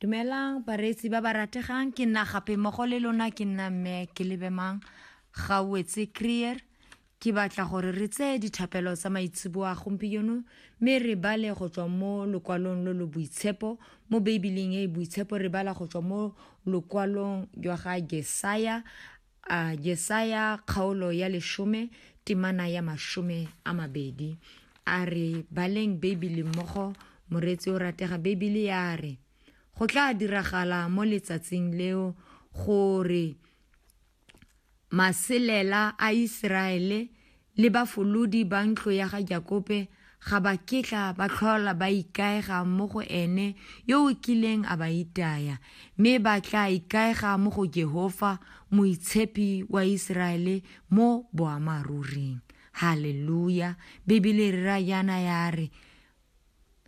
dumelang bareetsi ba ba rategang ke nna gape mmogo le lona ke nna mme ke lebemang ga wetse creer ke batla gore re tseye dithapelo tsa maitseboa gompieno mme re bale go tswa mo lokwalong lo lo boitshepo mo beibeling e e boitshepo re bala go tswa mo lokwalong jwa ga jesaya A Jesaya kgaolo ya leshome temana ya mashome a mabedi a re baleng Beibele mmogo moreetsi o ratega Beibele ya re go tla diragala mo letsatsing leo gore maselela a Iseraele le bafolodi ba ntlo ya ga Jakobe ga ba kitla ba tlhola ba ikaega mo go ene yo o kileng a ba itaya, mme ba tla ikaega mo go Jehofa, Moitshepi wa Iseraele mo boammaruring. Haleluya! Bibele e rera jaana ya re,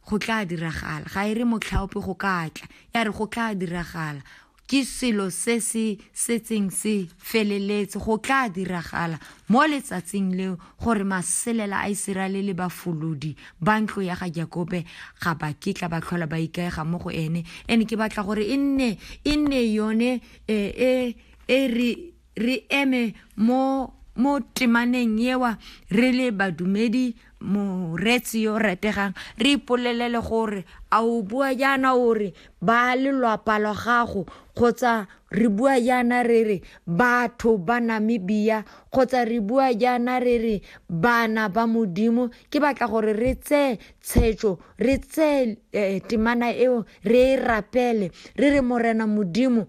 go tla diragala ga e re motlhaope go ka tla ya re go tla diragala ke selo se se setseng se feleletse go tla diragala mo letsatsing leo gore maselela a Iseraele le bafolodi ba ntlo ya ga Jakobe ga ba kitla ba tlhola ba ikaega mo go ene ene ke batla gore e nne e nne yone e e re re eme mo mo temaneng ewa re le badumedi moretsi yo rategang re ipolelele gore a o bua jaana o re ba lelwapa lwa gago kgotsa re bua jaana re re batho ba namibia kgotsa re bua jaana re re bana ba modimo ke batla gore re tseye tshetso re tseye eh, temana eo re e rapele re re morena modimo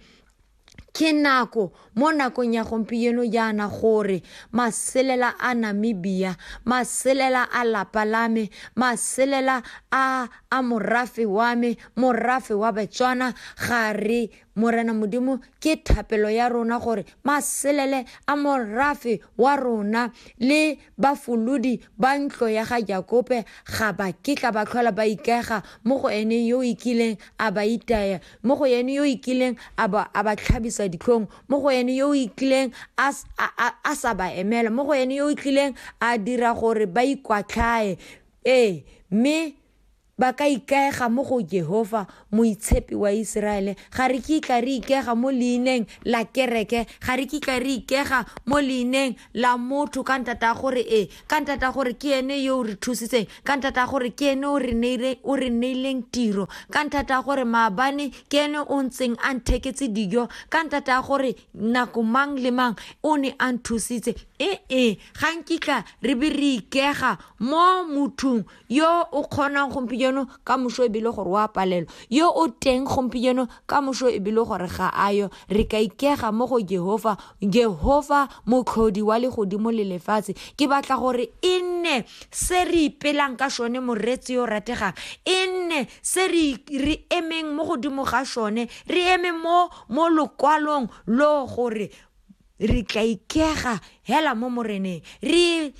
Ke nako mo nakong ya gompieno jaana gore maselela a Namibia, maselela a lapa la me, maselela a a morafe wa me, morafe wa Betswana, ga re Morena Modimo ke thapelo ya rona gore maselele a morafe wa rona le Bafolodi ba ntlo ya ga Jakobe ga ba kitla ba tlhola ba ikega mo go ene yo o ikileng a ba itaya, mo go ene yo o ikileng a ba, a ba tlhabisa ditlhong, mo go ene yo o ikileng a, a, a, a sa ba emela, mo go ene yo o ikileng a dira gore ba ikwatlhae. Ee, mme Ba ka ikaega mo go Jehofa, Moitshepi wa Iseraele. Ga re kitla re ikega mo leineng la kereke, ga re kitla re ikega mo leineng la motho, ka nthata ya gore ee, ka nthata ya gore ke ene yo o re thusitseng, ka nthata ya gore ke ene o re neileng tiro, ka nthata ya gore maabane ke ene o ntseng a ntheketse dijo, ka nthata ya gore nako mang le mang o ne a nthusitse. Ee, ga nkitla re be re ikega mo mothong yo o kgonang gompieno ka moso ebile gore o a palelwa yo o teng gompieno ka moso ebile gore ga a yo re ka ikega mo go jehova jehova motlhodi wa legodimo le lefatshe ke batla gore e nne se re ipelang ka sone moreetsi yo rategang e nne se re emeng mo godimo ga sone re eme mo mo lokwalong lo gore re tla ikega hela mo moreneng re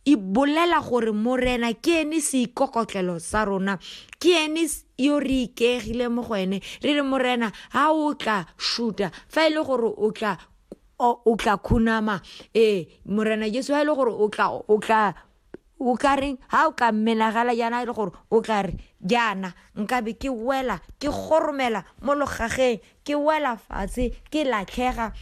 e bolela gore morena ke ene seikokotlelo sa rona ke ene yo re ikeegile mo go ene re re morena ga o tla shuta fa e le gore o tla o tla khunama ee morena jesu ga e le gore o tla o tla o ka reng ga o ka menagala jaana e le gore o tla re jaana nkabe ke wela ke goromela mo logageng ke wela fatshe ke latlhega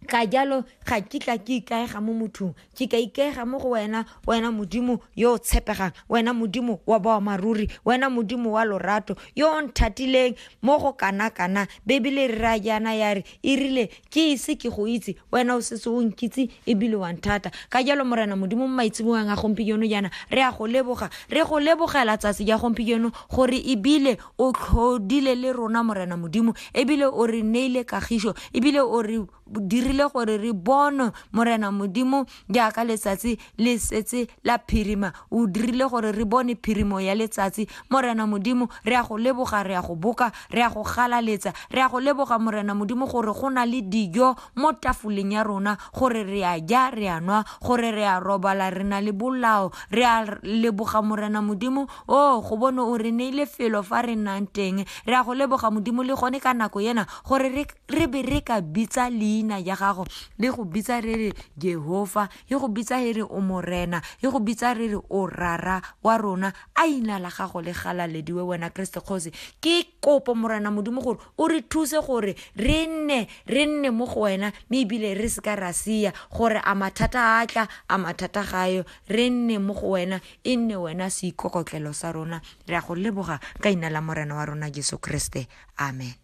ka jalo ga kitla ke ikaega mo mothong ke ka ikaega mo go wena wena modimo yo o tshepegang wena modimo wa boamaruri wena modimo wa lorato yo o nthatileng mo go kana-kana bebele re ra jaana ya re e rile ke ise ke go itse wena o setse o nkitse ebile wa nthata ka jalo morena modimo mo maitsebogang a gompieno jaana re a go leboga re go lebogela tsatsi ja gompieno gore ebile O tlhodile le rona, Morena Modimo, ebile o re neile kagišo, ebile o re dirile gore re bonwe, Morena Modimo, jaaka letsatsi le setse la phirima. O dirile gore re bone phirimo ya letsatsi, Morena Modimo, re ya go leboga, re ya go boka, re ya go galaletsa, re ya go leboga, Morena Modimo, gore go na le dijo mo tafoleng ya rona, gore re a ja, re a nwa, gore re a robala, re na le bolao. Re a leboga, Morena Modimo, o go bone o re neile felo fa re nnang teng re a go leboga modimo le gone ka nako ena gore re be re ka bitsa leina ya gago le go bitsa re re jehova e go bitsa e re o morena e go bitsa re re o rara wa rona a ina la gago le galalediwe wena kreste kgosi ke kopo morena modimo gore o re thuse gore re nne re nne mo go wena mme ebile re se ka ra sia gore a mathata a tla a mathata gayo re nne mo go wena E nne wena seikokotlelo sa rona, re a go leboga ka Leina la Morena wa rona Jesu Kriste. Amen.